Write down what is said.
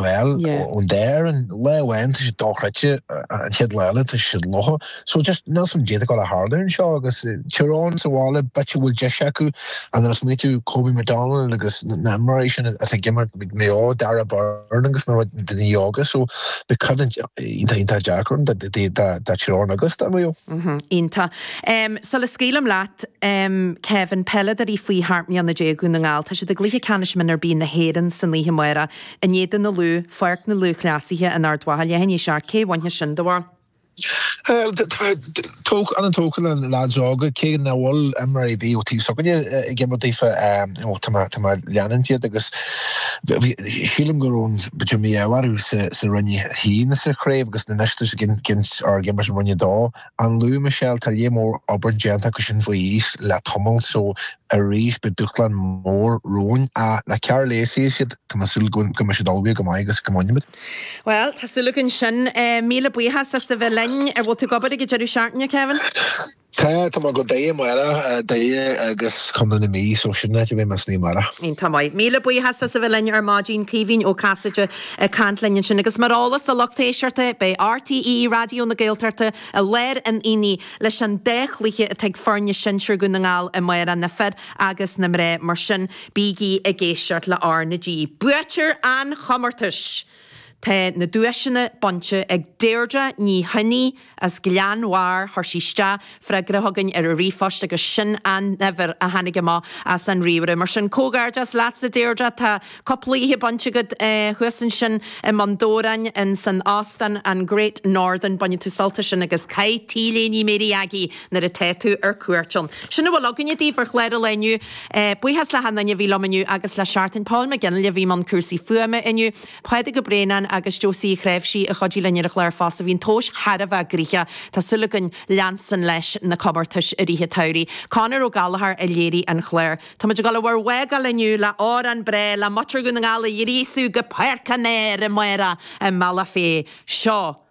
Bhuel, ón deireadh, an lá amháin, tá siad dochreidte, an chéad lá eile, tá siad lofa. So, just, níl a fhios againn caidé atá ag gabháil a tharlú anseo, agus Tír Eoghain sa bhaile, b'fhéidir go bhfuil deis acu, and then is maith tú Kobe McDonald agus na mar é sin atá ag imirt ag Maigh Eo, Darragh Beirne agus na rud daoine óga, so, beidh coimhlint iontach, iontach deacair ann do Tír Eoghain agus do Maigh Eo. Iontach. Sula scaoilim leat, Kevin, peileadóirí faoi sheacht mbliana déag Dhún na nGall, tá siad i gcluiche ceannais mionúr B na hÉireann san oíche amárach, In éadan an Lú, Páirc na Lúthchleasaithe in Ard Mhacha leath i ndiaidh a seacht, cé a bhainfeas sin, do bharúil? Tá mé an-tógtha le leaids óga, cé nach bhfuil imreoir ar bith ón taobh s'againne ag imirt daofa, tá mé ag leanúint iad agus sílim go raibh b'fhéidir mí-ádh orthu sa Roinn 1 sa chraobh agus anois tá siad ag imirt i Roinn 2. An Lú, Michelle, Tá léar mór obair déanta acu sin faoi aois le tamall, so arís beidh dúshlán mór romhainn. Ach le Karl Lacey is iad, tá mé ag súil go mbeidh siad ullmhaithe go maith agus go mbainfidh muid. Bhuel, tá súil againn sin. Míle buíochas as a bheith linn. An bhfuil tú ag obair ag an deireadh seachtaine, Kevin? Tá, tá mé go Doire amárach, Doire agus Contae na Mí, so sin an áit a mbeidh mise amárach. Tá go maith. Míle buíochas as a bheith linn ar maidin, Caoimhín Ó Casaide. Ag caint linn ansin, agus mar eolas do lucht éisteachta, beidh RTÉ Raidió na Gaeltachta i lár an aonaigh leis an dá chluiche atá ag foirne sinsir Dhún na nGall amárach, na fir agus na mná mar sin bígí ag éisteacht le R na G. Buaiteoir an chomórtais! Tá na duaiseanna bainte ag Deirdre Ní Choinnigh, As Gleann Bhairr, chuir sí isteach freagra chugainn ar an ríomhphost agus sin an uimhir a tháinig amach as an ríomhaire. Mar sin, comhghairdeas leat, a Deirdre. Tá cúpla oíche bainte agat thuas ansin i mBun Dobhráin san óstán An Great Northern. Bainfidh tú sult as sin agus caith tí léi Ní Mary Aggie nuair atá tú ar cuairt ann. Sin a bhfuil againne daoibh ar chlár an lae inniu. Buíochas le hAntaine a bhí liom inniu agus le John Paul McGinley a bhí i mbun cúrsaí fuaime inniu. Pádraig Ó Braonáin agus Josie Uí Chnáimhsí a chuidigh linn ar an chlár fosta. Bhí an tomhais thar a bheith gnoitheach, tá súil againn leanstan leis na comórtais i rith an tsamhraidh. Conor Ó Gallachóir a léirigh an clár. Táimid ag dul a bhur bhfágáil inniu le hamhrán breá le muintir Dhún na nGall a ghríosadh go Páirc an Áir amárach i mBealach Féich. Seo.